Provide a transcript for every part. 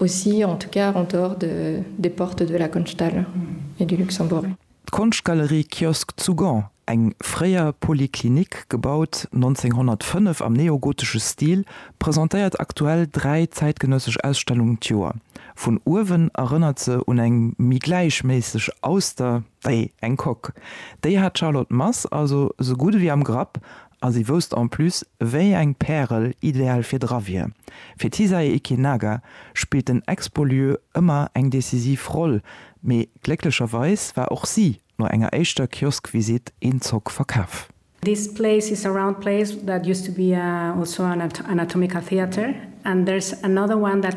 Aussi, en tout cas en dehors de, des portes de la Konschthalle et du Luxembourg. D'Konschtgalerie Kiosk zu Gand, eng fréier Polyclinique, gebaut 1905 am neogotesche Stil, presentéiert aktuell dräi zäitgenëssesch Ausstellungen d'Joer. Vun uewen erënnert se un eng méi gläichméisseg Auster wéi eng Coque. Déi hat d'Charlotte Mass also esou gutt ewéi am Grapp, A si wousst en plus, wéi eng Pärel ideal fir dra wier. Fir d'Hisae Ikinaga spillt den Expo-Lieu ëmmer eng decisiv Roll, mee glécklecherweis war och si no enger éischter Kiosk-Visitt een Zock verkaf. This place is a round place that used to be also an anatomical theatre and there's another one that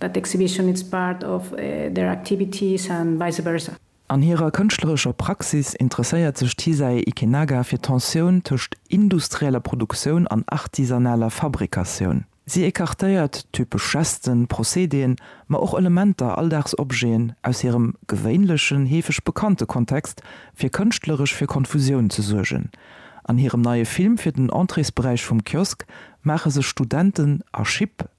That exhibition is part of their activities and vice versa. An hirer kënschtlerescher Praxis interesséiert sech d'Hisae Ikenaga fir d'Tensioun tëscht industrieller Produktioun an artisanaler Fabrikatioun. Si ecartéiert typesch Gesten, Procédéen, ma och Elementer, Alldagsobjeten, aus hirem gewéinlechen, heefeg bekannte Kontext, fir kënschtleresch fir Konfusioun ze suergen. An hirem neie Film fir den Entréesberäich vum Kiosk maache sech Studenten a Schipp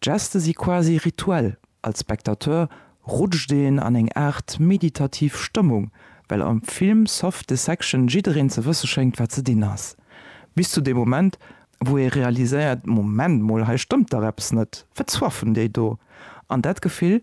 D'Geste si quasi rituell, als Spectateur rutscht een an eng Aart meditativ Stëmmung, well am Film Soft Dissection jiddereen ze wësse schéngt wat ze dinn ass. Bis zu deem Moment wou ee realiséiert, Moment mol, hei stëmmt dach eppes net, wat zwaffen déi do? An dat Gefill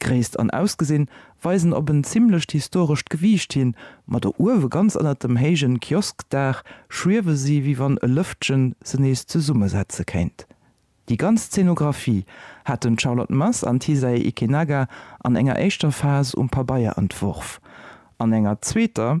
Gréisst an Ausgesinn weisen op en zimmlecht historescht Gewiicht hin, ma do uewe ganz ënnert dem héijen Kioskdaach schwiewe si wéi wann e Lëftchen se nees zesummesetze kéint. Déi ganz Szenographie haten d'Charlotte Mass an d'Hisae Ikenaga an enger éischter Phas um Pabeier entworf, an enger zweeter,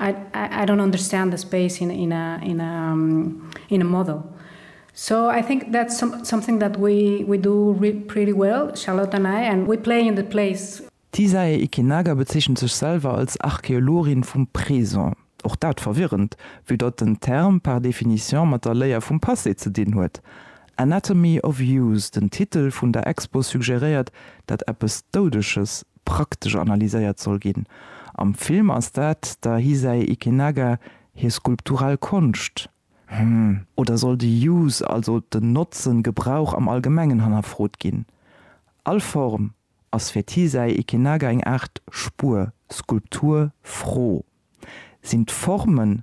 I don't understand the space in a model. So I think that's something that we do pretty well, Charlotte an I, and we play in the place. D'Hisae Ikinaga bezeechent sech selwer als Archeologin vum Présent. Och dat verwirrend, vue datt den Term par définition mat der Léier vum Passé ze dinn huet. Anatomy of Use, den Titel vun der Expo suggeréiert, datt eppes Doudeges praktesch analyséiert soll ginn. Am Film ass dat der Hisai Ikenaga hir skulptural Konscht. Hm, oder soll de Use, also den Notzen, Gebrauch am Allgemengen hannerfrot ginn? All Form ass fir d'Hisai Ikenaga eng Aart Spuer, Skulptur, Fro. Sinn d'Formen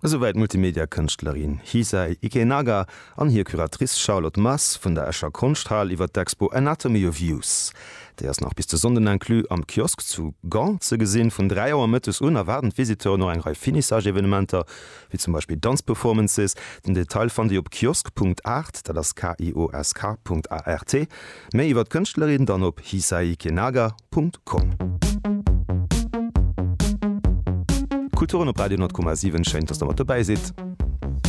Esouwäit d'Multimedia-Kënschtlerin Hisay Ikenaga an hir Curatrice Charlotte Mass vun der Escher Konschthal iwwer d'Expo Anatomy of Use. Déi ass nach bis de Sonnden inclus am Kiosk zu Gand ze gesinn. Vun 3 Auer mëttes un erwaarden d'Visiteuren och eng Rei Finissage-Evenementer, wéi zum Beispill Danz-Performances. Den Detail fannt Dir op kiosk.art, dat ass KIOSK. Art. Méi iwwer d'Kënschtlerin dann op hisaikienaga Punkt com. Kulturen op Radio 100,7 schéin dass der mat dobäi sidd.